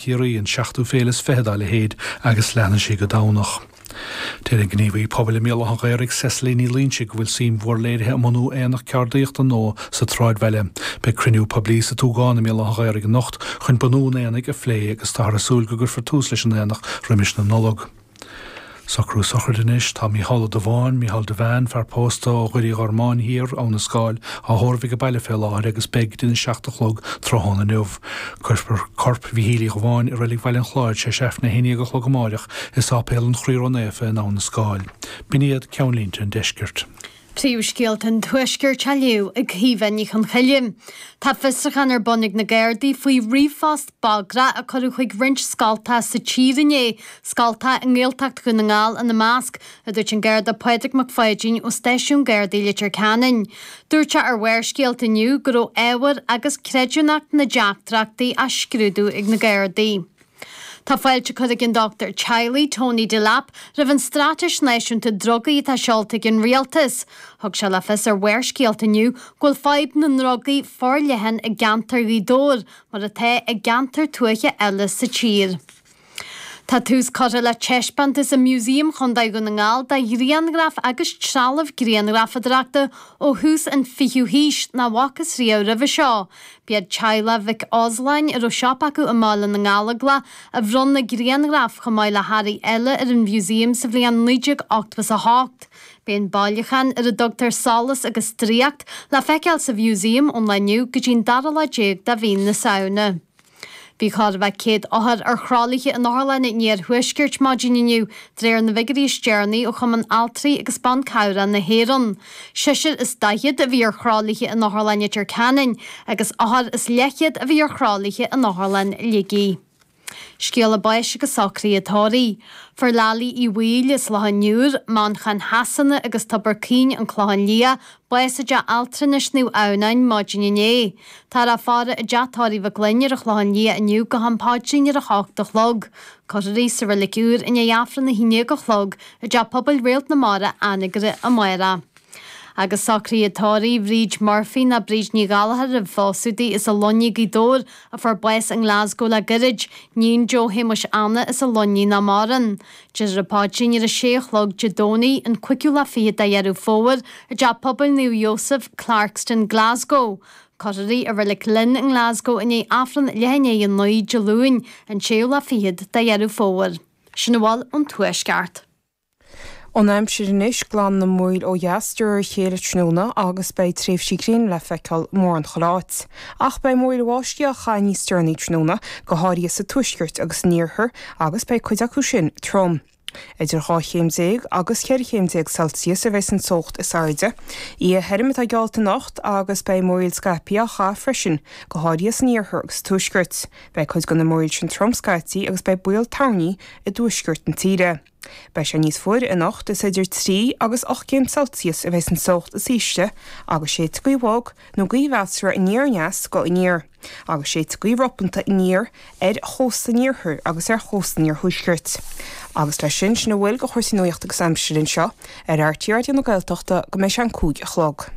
Ciarraí, an seachtú féile is fiche dá leithéid, agus leanfaidh sí go Domhnach. Deir an gníomhaí pobail i mBéal Átha an Ghaorthaidh, Cecily Ní Loinsigh, go bhfuil suim mhór léirithe i mbunú aonach ceardaíochta nua sa tsráidbhaile. Beidh cruinniú poiblí sa tSúgán i mBéal Átha an Ghaorthaidh anocht chun bunú an aonaigh a phlé agus táthar ag súil go gcuirfear tús leis an aonach roimis na Nollag. Socrú sochraide anois. Tá Mícheál Ó Dubháin, Mícheál Devane, fear pósta ó Dhoire Uí Ghormáin thiar, Abhainn an Scáil, á thórramh aige baile fé láthair agus beidh go dtí na seacht a chlog tráthnóna inniu. Cuirfear corp Mhichíl Uí Dhubháin i reilig Bhaile an Chláir tar éis Aifreann a haon déag a chlog amáireach i Sáipéal an Chroí Ró-Naofa in Abhainn an Scáil. B'in iad ceannlínte an deiscirt. Príomhscéalta an tuaiscirt á léamh ag Caoimhe Ní Chonchoille. Tá fiosruchán ar bun ag na Gardaí faoi ríomhphost bagrach a cuireadh chuig roinnt scoilte sa tír inné, scoilte i nGaeltacht Dhún na nGall ina measc, a dúirt an Garda Pádraig Mac Pháidín ó stáisiún Gardaí Leitir Ceanainn. Dúirt sé ar Bharrscéalta inniu go raibh ábhar agus creidiúnacht na dteachtaireachtaí á scrúdú ag na Gardaí. Tá fáilte curtha ag an dochtúir teaghlaigh Tony Delap roimh an Straitéis Náisiúnta Drugaí atá seolta ag an Rialtas. Thug sé le fios ar Bharrscéalta inniu go bhfuil fadhb na ndrugaí forleathan i gceantar Ghaoth Dobhair mar atá i gceantair tuaithe eile sa tír. Tá tús curtha le taispeántas i Músaem Chontae Dhún na nGall de ghrianghraif agus trealamh grianghrafadóireachta ó thús an 20ú haois nach bhfacthas riamh roimhe seo. B'iad teaghlach Mhic Osláin, a raibh siopa acu i mBaile na nGallóglach, a bhronn na grianghraif, chomh maith le hearraí eile, ar an Mhúsaem sa bhliain 1988. Beidh an bailiúchán ar a dtugtar Solas agus Draíocht le feiceáil sa Mhúsaem ón lá inniu go dtí an dara lá déag de mhí na Samhna. Bhí chóir a bheith 100 othar ar thralaithe in otharlanna an iarthuaiscirt maidin inniu, de réir na bhfigiúirí is deireanaí ó Chumann Altraí agus Ban Cabhrach na hÉireann. Seisear is daichead a bhí ar thralaithe in Otharlann Leitir Ceanainn agus othar is leithchéad a bhí ar thralaithe in Otharlann Shligigh. Scéala báis agus socruithe tórraimh. Fuair Lally Uí Bhaoill as Loch an Iúir, Manchain Shasana agus Tobar Caoin, An Clochán Liath, bás i dteach altranais Naomh Adhamhnáin maidin inné. Táthar á faire i dteach tórraimh Mhic Fhloinn ar an Chlochán Liath inniu go ham paidrín ar a hocht a chlog. Cuirfear í sa reilig úr i ndiaidh Aifreann a haon déag a chlog i dTeach Pobail Réalt na Mara, Anagaire, amárach. Agus socruithe tórraimh Bhríd Murphy nó Bríd Ní Ghallchóir roimh phósadh di as an Luinnigh, Gaoth Dobhair a fuair bás i nGlasgow le goirid, Níon Joe Shéamuis Anna as an Luinnigh nach maireann. Déarfar an paidrín ar a sé a chlog Dé Domhnaigh, an cúigiú lá fichead de Dheireadh Fómhair, i dTeach Pobail Naomh Iósaf, Clarkston, Glasgow. Cuirfear í i reilig Linn i nGlasgow i ndiaidh Aifreann leath i ndiaidh a naoi Dé Luain, an séú lá fichead de Dheireadh Fómhair. Sin a bhfuil ón tuaisceart. An aimsir anois glanfaidh na múraíl ó dheas de réir a chéile tráthnóna agus beidh tréimhsí gréine le feiceáil mórán chuile áit. Ach beidh múraíl bháistí á chaitheamh níos deireanaí tráthnóna, go háirithe sa tuaisceart agus san iarthar agus beidh cuid acu sin trom. Idir dhá chéim déag agus ceithre chéim déag Celsius a bheidh an teocht is airde. Oíche thirim atá geallta anocht agus beidh múraíl scaipthe á chaitheamh freisin, go háirithe san iarthar agus sa tuaisceart. Beidh cuid de na múraíl sin trom scaití agus beidh baol toirní i dtuaisceart na tíre. Beidh sé níos fuaire anocht, is idir trí agus ocht gcéim Celsius a bheidh an teocht is ísle agus séidfidh gaoth bhog nó gaoth mheasartha aniar-aneas go aniar agus séidfidh gaoth ropánta aniar ar chósta an iarthair agus ar chósta an iarthuaiscirt. Agus leis sin, sin a bhfuil de chúrsaí nuachta agus aimsire anseo ar RTÉ Raidió na Gaeltachta go mbeidh sé an cúig a chlog.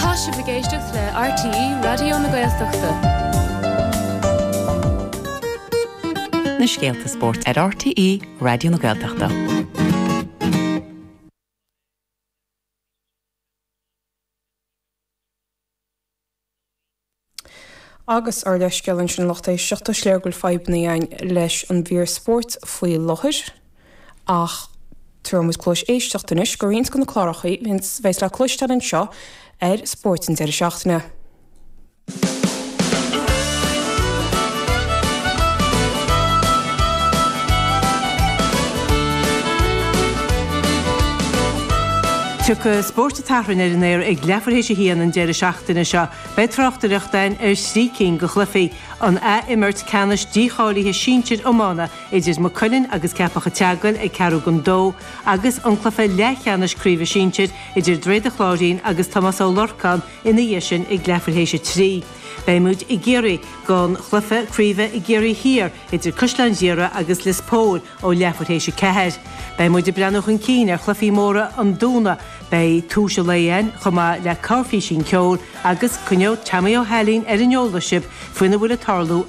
Tá sibh ag éisteacht le RTÉ Raidió na Gaeltachta. na scéalta spóirt ar RTÉ Raidió na Gaeltachta. agus ár leithscéal ansin lucht éisteachta, is léir go bhfuil fadhbanna againn leis an mhír spóirt faoi láthair, ach tabharfaidh muid cluais éisteachta anois do roinnt de na cláracha a bheas le cloisteáil anseo ar Spóirt an deireadh seachtaine. Tiocfaidh Spórt tSathairn ar an aer ag leathuair théis a haon an deireadh seachtaine seo. Beidh tráchtaireacht againn ar thrí cinn de chluichí an athimirt ceannais dícháilithe sinsir iomána idir Maigh Cuilinn agus Ceapach a' tSeagail ag ceathrú don dó agus an cluiche leathcheannais craoibhe sinsir idir Droichead an Chláirín agus Tomás Ó Lorcáin ina dhiaidh sin ag leathuair théis a trí. Beidh muid i gCiarraí don chluiche craoibhe i gCiarraí Thiar idir Caisleán Ghriaire agus Lios Póil, Ó leathuair théis 4. Beidh muid ag breathnú chun cinn ar chluifí móra an Domhnaigh. Beidh tomhais an lae ann, chomh maith le corrphísín ceoil, agus coinneoidh Teaimí Ó hAilín ar an eolas sibh faoina bhfuil ag tarlú i